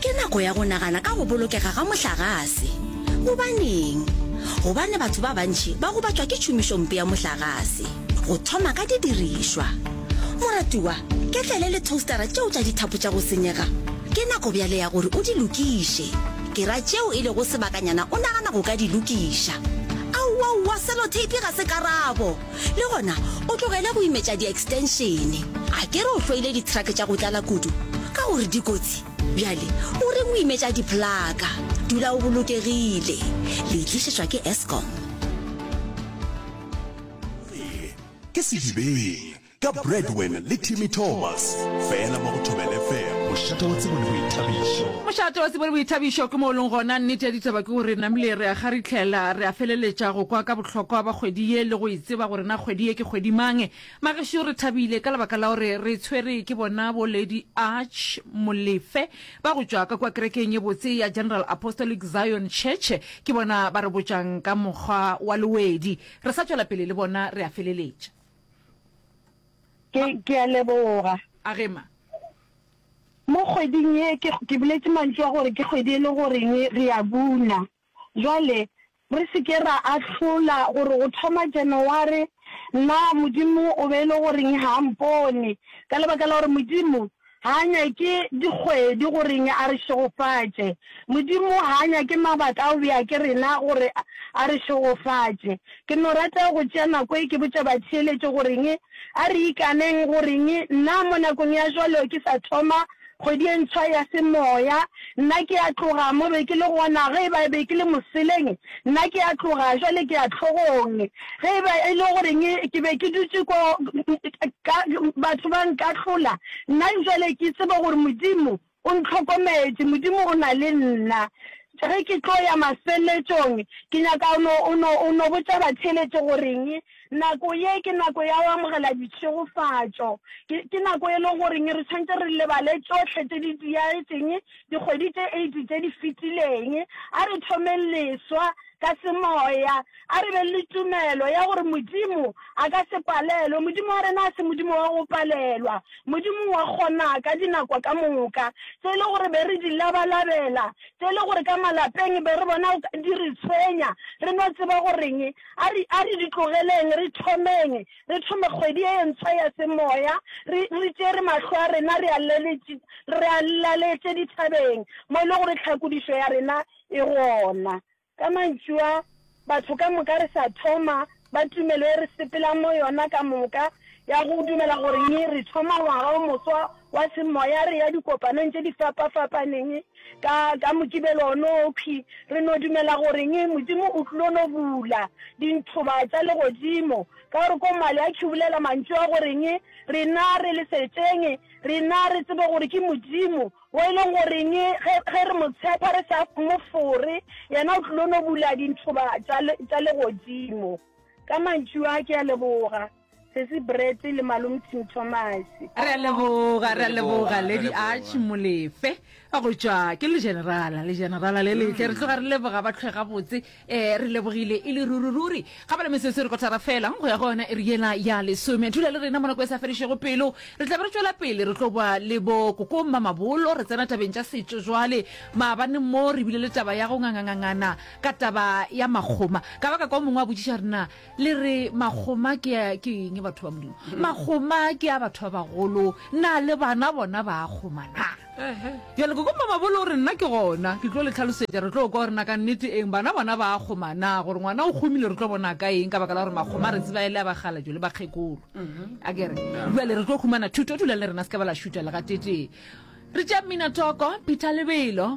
ke nako ya go nagana ka go bolokega ga mohlagase gobaneng gobane batho ba bantši ba go batšwa ke tšhomišompe ya mohlagase go thoma ka didirišwa moratiwa ke tlele le toastera tšeo tša dithapo tša go senyega ke nako bjale ya gore o di lokiše ke ra tšeo e lego sebakanyana o nagana go ka di lokiša aowaowa selothape ga se karabo le gona o tlogele go imetša di-extenšene a ke re o hloile dithrake tša go tlala kudu ka gore dikotsi bjale o re o imetša diplaka dula o bolokegile le itlišetšwa ke escom ke sedibeng ka bradwen le timmy thomas fela mo go thobele fela mošate wa tsebo le boithabišo mošate wa tsebo le boithabišo ke mo o leng gona nnete ya ditaba ke gore namile re a ga re itlhela re a feleletša go kwa ka tlhokwa ba kgwedi ye le go e tseba gore na kgwedi ye ke kgwedi mang. Magešo re thabile ka lebaka la gore re tshwere ke bona bo Lady Arch Molefe ba go tšwa ka kua kerekeng ye botse ya General Apostolic Zion Church. Ke bona ba re botšang ka mokgwa wa lewedi. Re sa tšwela pele le bona re a feleletša. Ke, ke a leboga. A ge ma? Mo kgweding ye ke, ke boletše mantšu a gore ke kgwedi e le goreng re a buna. Jwale, re se ke ra ahlola gore go thoma Janaware na Modimo o be e le goreng ga a mpone, ka lebaka la gore Modimo ga a nyake dikgwedi gore a re šegofatše. Modimo ga a nyake mabaka a go bea ke rena gore a re šegofatše. Ke no rata go tšea nako e ke botša batheeletši gore a re ikaneng gore na mo nakong ya jwalo ke sa thoma Kgwedi e ntshwa ya semoya. Nna ke a tloga mo be ke le gona, ge e ba e be ke le moseleng, nna ke a tloga, bjale ke ya hlogong. Ge e ba e le goreng ke be ke dutše ko, ka, batho ba nkahlola, nna bjale ke tseba gore Modimo o ntlhokometše, Modimo o na le nna. Ge ke tlo ya mafeletšong, ke nyaka o no, o no, o no botša batheeletše goreng. Nako ye ke nako ya go amogela ditšhegofatšo. Ke, ke nako e le goreng re tshwanetse re lebale tšohle tše di diagetseng dikgwedi tše eight tše di fetileng. A re thomeng leswa ka semoya. A re beng le tumelo ya gore Modimo a ka se palelwe. Modimo wa rena a se Modimo wa go palelwa. Modimo wa kgona ka dinako ka moka. Tse e le gore be re di labalabela, tse e le gore ka malapeng be re bona di re tshwenya, re no tseba goreng? A re, a re di tlogeleng, re thomeng, re thome kgwedi e ntswa ya semoya, re, re tšere mahlo a rena re a laletše, re a laletše dithabeng, mo e le gore tlhakodišo ya rena e gona. Ka mantšu a, batho ka moka re sa thoma, ba tumelo ye re sepelang mo yona ka moka, ya go dumela gore nyi re thoma ngwaga o moswa, wa semoya re ya dikopanong tše di fapa-fapaneng, ka, ka Mokibelo o no okhwi, re no dumela goreng, Modimo o tlilo no bula dinthoba tša Legodimo, ka gore ko Mali a khibulela mantšu a goreng, Rena re le setšeng, rena re tsebe gore ke Modimo, wo e leng goreng ge, ge re Mo tshepa re sa Mo fore, Yena o tlilo no bula dinthoba tša, tša Legodimo. Ka mantšu a, ke a leboga. Sesi Brett le Malum Tim Thomas. Re a leboga, re a leboga Lady Arch Molefe go tšwa ke legenerala legenerala le letle re tloga re leboga ba tlhwe gabotse um re lebogile e le ruri-ruri ga ba le mesese re kotara fela go ya go yona e re yela ya lesome thula le rena monako e sa fedišego pelo re tla be re tšwela pele re tlo boa le bo kokong mamabolo re tsena tabeng tša setšo jwale maabane mo re bile le taba ya go ngangangangana ka taba ya makgoma ka baka kwa mongwe a botšiša rena Le re makgoma ke a ke eng batho ba modimo? Makgoma ke a batho ba bagolo, na le bana bona ba a kgoma na? Bjale koko mamabolo o re nna ke gona ke tlo le tlhalosetša re tlo kwa gore na ka nnete eng bana bona ba a kgoma na gore ngwana o kgomile re tlo bona ka eng ka baka la gore makgoma re tseba e le a bakgalajo le bakgekolo a kere bjale re tlo humana thuto dulang le rena se ka ba la šuta le gatetee re tša mminatoko peter lebelo